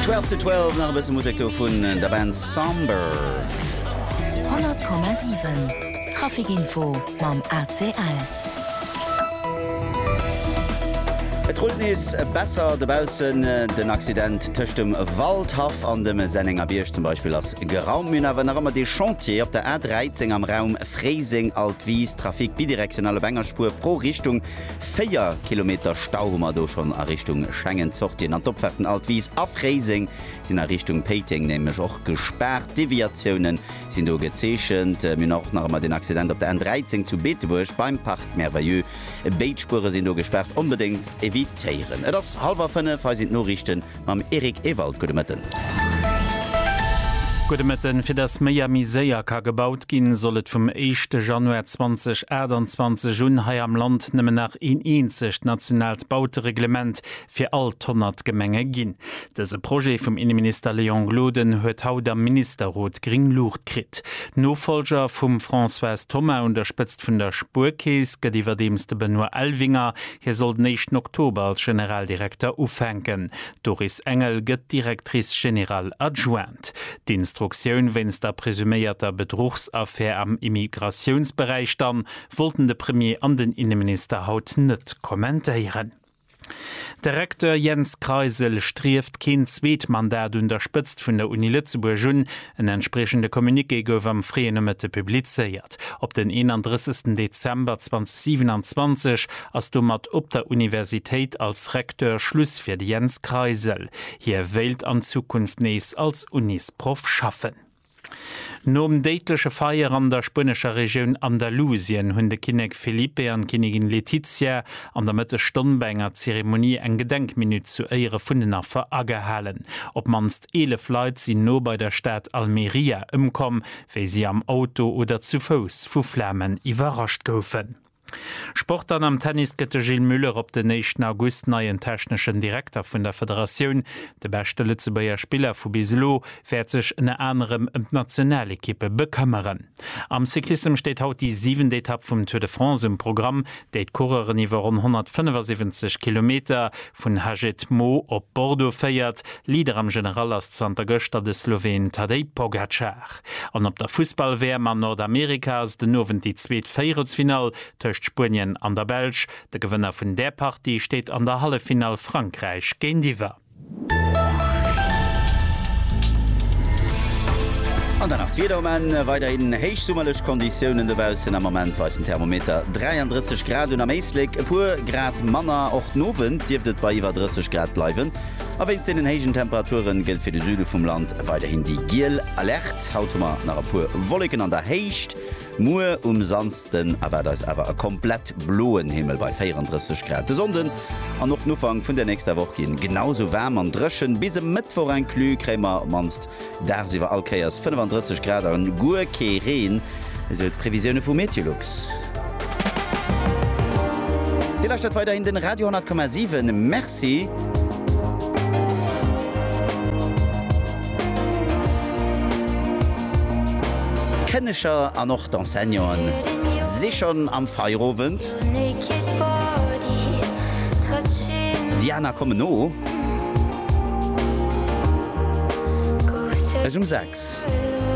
Twelve to Twelve, nach e bësse Musek do vun der Band Somber. 100,7 Trafikinfo mam ACL. Et rullt nees besser dobaussen. Den Accident tëscht dem Waldhaff an dem Sennengerbierg zum Beispill ass geraumt. Mir hunn awer nach ëmmer dee Chantier op der A 13 am Raum Fréiseng, Altwis. Trafic bidirektional op enger Spuer pro Richtung. Véier Kilometer Stau hu mer do schonn a Richtung Schengen. D'Sortien an d'Opfaarten Alt Wiis a Fréiseng sinn a Richtung Péiteng nämlech och gespaart. Deviatioune sinn do gezeechent. Mir hunn och nach ëmmer deen Accident op der N 13 zu Beetebuerg beim Parc Merveilleux. Béid Spuere sinn do gespaart. Onbedéngt evitéieren. Et ass hallwer fënnef, hei sinn d'Noriichten. mam Eric Ewald. Gudde Mëtten. Gudde Mëtten. Fir datt méi a méi séier ka gebaut ginn, soll et vum éischte Januar 2028 un hei am Land nëmmen nach een eenzegt nationaalt Bautereglement fir all d'honnert Gemenge ginn. Dëse Projet vum Inneminister Léon Gloden huet haut am Ministerrot gréng Luucht kritt. Nofollger vum Françoise Thoma un der Spëtzt vun der Spuerkeess gëtt iwwerdeems de Benoît Elvinger. Hie soll den éischten Oktober als Generaldirekter ufänken. D'Doris Engel gëtt d'Directrice générale adjointe. D'Instruktioun wéinst der presuméierter Bedruchsaffär am Immigratiounsberäich dann, wollten de Premier an den Inneminister haut net kommentéieren. De Recteur Jens Kreisel strieft keen zweet Mandat un der Spëtzt vun der Uni Lëtzebuerg un. En entspriechende Communiqué gouf am fréie Nomëtte publizéiert. Op den 31 Dezember 2027 ass domat op der Universitéit als Recteur Schluss fir de Jens Kreisel. Hie wéilt an Zukunft nees als Unisproff schaffen. Nom déidleche Feier an der spuenescher Regioun Andalusien hunn de Kinnek Felipe an d'Kinnigin Letizia an der Mëttesstonn bei enger Zeremonie eng Gedenkminutt zu Éiere vun den Affer agehalen. Op d'mannst 11 Leit sinn no bei der Stad Almeria ëmkomm, wéi si am Auto oder zu Fouss vu Flamen iwwerrascht goufen. Sport An am Tennis gëtt de Gilles Muller op den éischten August neien techneschen Direkter vun der Federatioun. De beschte Lëtzebuerger Spiller vu bis elo wäert sech ënner anerem ëm d'Nationalekippe bekëmmeren. Am Cyclissem steet haut déi siwent Etapp vum Tour de France um Programm, déi d'Coureuren iwwer ronn 175 Kilometer vun Hagetmau op Bordeaux féiert. Leader am General ass zanter gëschter de Sloween Tadej Pogacar. An op der Fussball-WM an Nordamerika ass den Owend déi zweet Véierelsfinall tëscht Spuenien an der Belsch. De Gewënner vun där Partie steet an der Halleffinall Frankräich géintiwwer. An dann nach d'Wieder um Enn, Weiderhin héichsummerlech Konditiounen dobaussen. Am Moment weist den Thermometer 33 Grad un, am Éislek e puer Grad manner. Och den Owend dierft et bei iwwer 30 Grad bleiwen a wéinst deenen héijen Temperature gëllt fir de Süde vum Land weiderhin déi giel Alerte. Haut hu mer nach e puer Wolleken an der Héicht. Muer um Samsden erwaart eis awer e komplett bloen Himmel bei 34 Grad. De Sonnden an och den Ufank vun der nächster Woch ginn genau sou waarm an dréchen. Bis e Mëttwoch inclus kréie mer op mannst dagsiwwer all Kéiers 35 Grad an guer kee Reen, esou d'Previsioune vu Meteolux. Dir lauschtert weiderhin den Radio 10,7. Merci. D'Kënneger an och d'Enseignanten si schonn am Feierowend. Déi aner kommen no. Ech um 6.